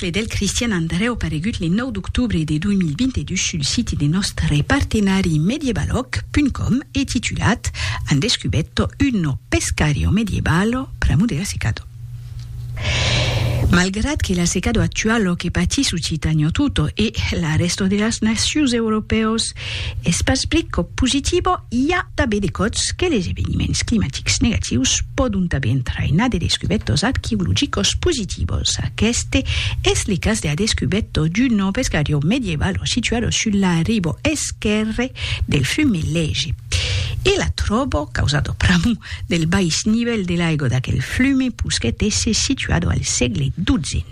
e del Cristian Andrèu paregut le 9 d'octobre de 2022 sul site de nòstre partenari medievaloc.com e titulat Han descubetto uno pescario medievalo pr'amor de la secado. Malgrat que la secado actualo que patís Occitània tota e la rèsta de las nacions europèos Es pas blet qu'au positivo i a tanben de còps que les eveniments climatics negatius pòdon tanben entrainar de descubètos arqueologicos positivos. Aqueste es le cas de la descubèto d'un ovesgarion medievalo situado sul la ribo esquèrre del fume Lege. E la tròbo causado pr'amor del bais nivèl de l'aigo d'aquel fume pus qu'eth esse situado al sègle xii.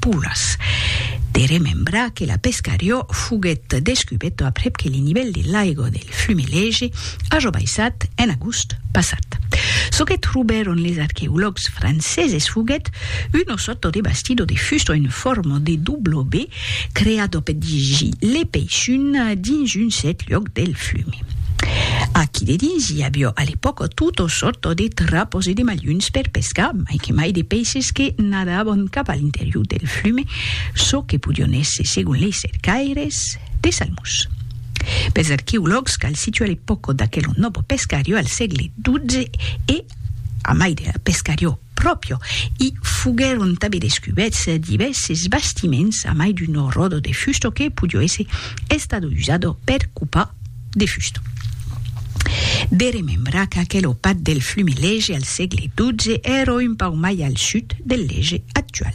puras. De remembrar que la Pescariò foguèt descubèta aprèp que le nivèl de l'aiga del Flumelège aja baissat en agost passat. Çò que trobèron les arqueològs franceses foguèt una sòrta de bastidor de fusta en forma de W creada per dirigir le peixun dins un cèrt luòc del flume. Aquí dedins i aviá a l'epòca tota sòrta de trapas e de malhons per pescar, mai que mai de peixes que Andavan cap a l'interior del flume çò que podion èsser, segon lei cercaires, de salmons. Pels arqueològs cal situar l'epòca d'aquel novo pescariò al sègle XII e, a mai de la pescariò pròpria, i foguèron tanben descubèts divèrses bastiments a mai d'un ròdo de fusta que podió èsser estado usado per copar de fusta. De remembrar qu'aquel opat del flumi Lege al sègle XII èra un pauc mai al sud del Lege actual.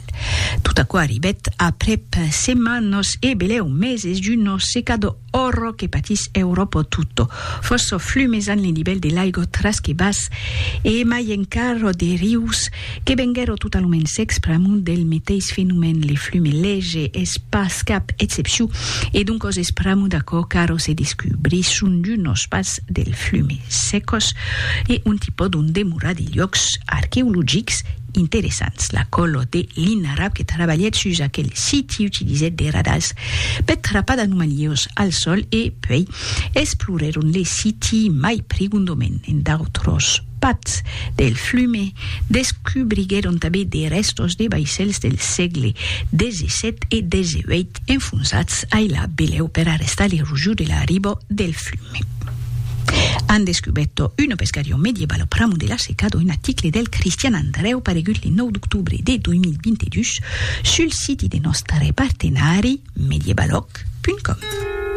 Tot aquò arribèt aprèp setmanas e belèu meses d'una secada òrra que patís Euròpa tota. Fòrça flumes an lo nivèl de l'aiga tras que bas e mai encara de rius Que venguèro totalament s'expramon del meteis fenomèn le flume lege es pas cap excepciu e doncos expramo d'aquò qu'aro se descubrís son d'unos pas del flume secos e ont i pòdon demorar de luòcs arqueologics interessants la còlo de Linarab que trabalhèt sus aquel siti utilizèt de radars per trapar d'anomalios al sòl e puèi explorèron le siti mai prigondomènt en d'autros Pas del flume, descubriguèron tanben de rèstos de vaissèls del sègle xvii e xviii enfonsats ai la belèu per arrestar l'erosiu de l'arribo del flume. An descubèrto una pescarion medievalo pr'amont de la seca d'un aticle del Cristian Andrèu paregut le 9 d'octobre de 2022 sul siti de nòstre partenari Medievaloc.com.